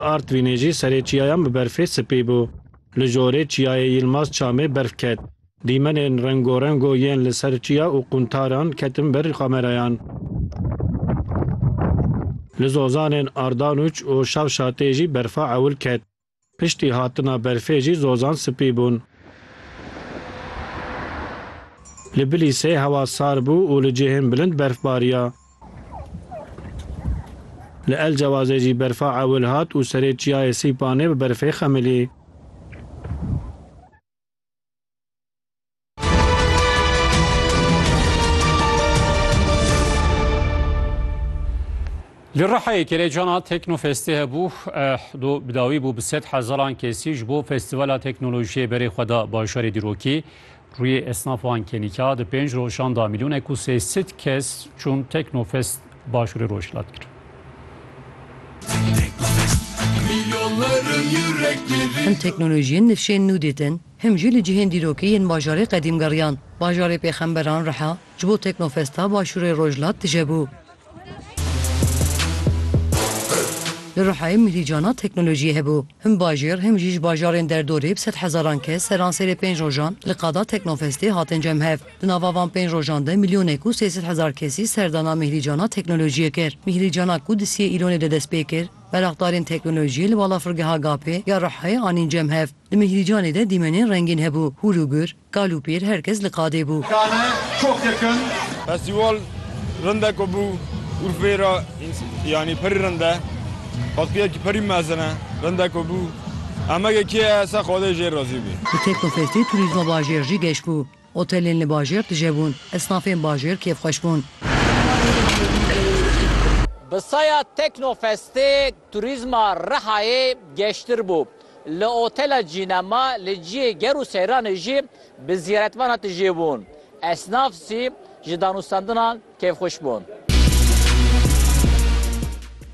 Artvînê jî serê çiyayan bi berfê sipî bû. Li jorê Çiyayê Yilmaz Çamê berf ket. Dîmenên rengorengo yên li ser çiya û quntaran ketin ber kamerayan. Li zozanên Ardanuç û Şavşatê jî berfa ewil ket. Piştî hatina berfê jî zozan sipî bûn. Li Bilîsê hewa sar bû û li cihên bilind berf bariya. Li El Cewazê jî berfa ewil hat û serê çiyayê Sîpanê bi berfê xemilî. Li Rihayê kêlêcana Teknofestê hebû do bi dawî bû bi sed hezaran kesî ji bo festîvala teknolojiyê berê xwe da bajarê dîrokî Rûyê esnaf a Nkênîka di pênc rojan de mîlyonek û sê sed kes çûn Teknofest Başûrê Rojhilat kir. Him teknolojiyên nifşên nû dîtin, him jî li cihên dîrokî yên bajarê qedîm geriyan. Bajarê pêxemberan reha ji bo Teknofesta Başûrê Rojhilat tije bû. Li Rihayê mîlî cana teknolojiyê hebû. Him bajêr him jî ji bajarên derdorê bi sed hezaran kes seransêrê pênc rojan li qada Teknofestê hatin cemhev. Di nava van pênc rojan de milyonek û sê sed hezar kesî serdana mîhlî cana teknolojiyê kir. Mîhlî cana ku di siyê Îlonê de dest pê kir, meraxdarên teknolojiyê li balafirgeha GAP'ê ya Rihayê anîn cemhev. Di mîhlî canê de dîmenên rengîn hebû, hûr û gur, Kal û pêr her kes li qadê bû. Dane çok yakın. Festival rindeko bû Urfeyê ra yanî pirî rind e. Xwespiyekî pirî mezin e. Rindeko bû. Emegê kê ye ser xwedê jê razî bî. Bi Teknofestê turîzma bajêr jî geş bû. Otelên li bajêr tije bûn. Esnafên bajêr kêfxweş bûn. Bi saya Teknofestê turîzma Rihayê geştir bû. Li otela Cînema li ciyê ger û seyranê jî bi zîretvan hate jêbûn. Esnaf zî ji danûstandinan kêfxweş bûn.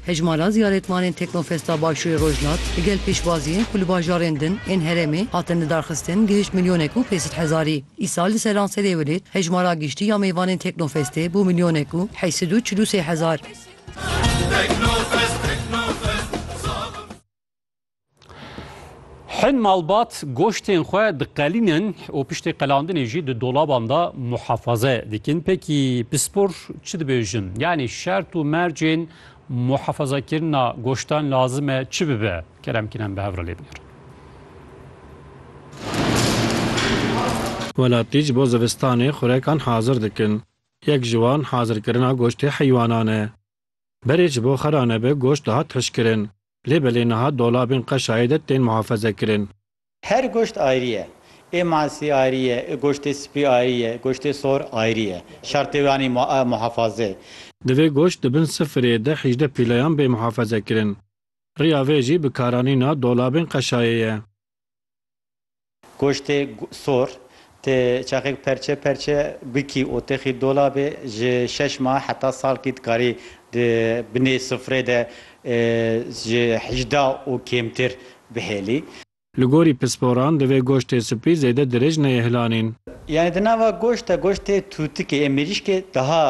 Hejmara ziyaretmanên Teknofesta Başûrê Rojhilat li gel pêşbaziyên ku li bajarên din ên herêmê hatin lidarxistin gihişt milyonek û pênc sed hezarî. Îsal li seranserê welêt hejmara giştî ya mêvanên Teknofestê bû milyonek û heşt sed û çil û sê hezar. Hin malbat goştên xwe diqelînin û piştê qelandinê jî di dolaban da muhefaze dikin. Pekî pispor çi dibêjin? Yanî şert û mercên muhefazekirina goştan lazim e çi bibe? Kerem kinem bi hevra lê binir. Welatî ji bo zivistanê xurekan hazir dikin. Yek ji wan hazirkirina goştê heywanan e. Berê ji bo xera nebe goşt dihat hişkirin. Lê belê niha dolabên qeşayê de tên muhafeze kirin. Her goşt ayrî ye. Ê masî ayrî ye, ê goştê spî ayrî ye, goştê sor ayrî ye. Şertê wan î muhafaze. Divê goşt di bin sifirê de hîjdeh pîleyan bê muhafeze kirin. Riya vê jî bikaranîna dolabên qeşayê ye. Goştê sor tê çaxek perçe perçe bikî û têxî dolabê ji şeş mah heta salkî dikarî di binê sufrê de ji hejdeh û kêmtir bihêlî. Li gorî pisporan divê goştê spî zêde dirêj neyê hilanîn. Yanî di nava goşt de goştê tûtikê ê mirîşkê daha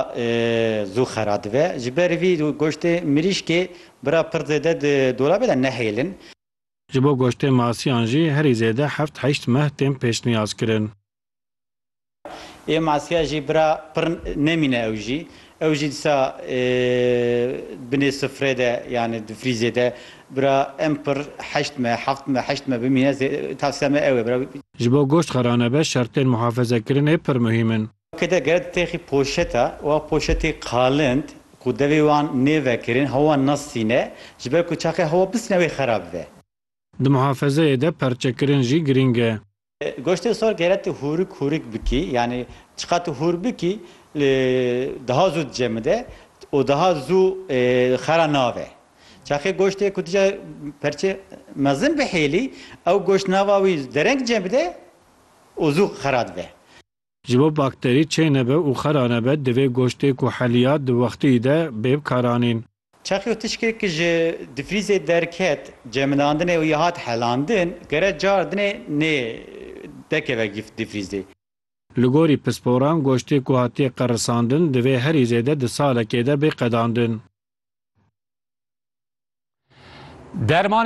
zû xera dibe. Ji ber vî goştê mirîşkê bira pir zêde di dolabê de nehêlin. Ji bo goştê masiyan jî herî zêde heft heşt meh tên pêşniyazkirin. Ê masiya jî bira pir nemîne ew jî. Ew jî disa binê sifrê de yanî di frîzê de bira em pir heşt meh, heft meh, heşt meh bimîne tavsiya me ew e bira. Ji bo goşt xera nebe şertên muhafezekirinê pir muhîm in. Ke de gere ditêxî poşeta wa poşetê qalind ku devê wan nêvekirin hewa nasîne ji ber ku çaxê hewa bisîne wê xerab be. Di muhafezeyê de perçekirin jî girîng e. Goştê sor gere tu hûrik hûrik bikî yanî çiqat tu hûr bikî daha zû dicemide û daha zû xera nabe. Çaxê goştê ku dije perçe mezin bihêlî ew goşt nava wî dereng cemide û zû xera dibe. Ji bo bakterî çê nebe û xera nebe divê goştê ku heliya di wextî de bê bikaranîn. Çaxê û tişkê ku ji difrîzê derket cemilandine û ya hat helandin gere cardinê nê dekeve difrîzê. Li gorî pisporan goştê ku hatiye qerisandin divê herî zêde di salekê de bê qedandin. Dermanên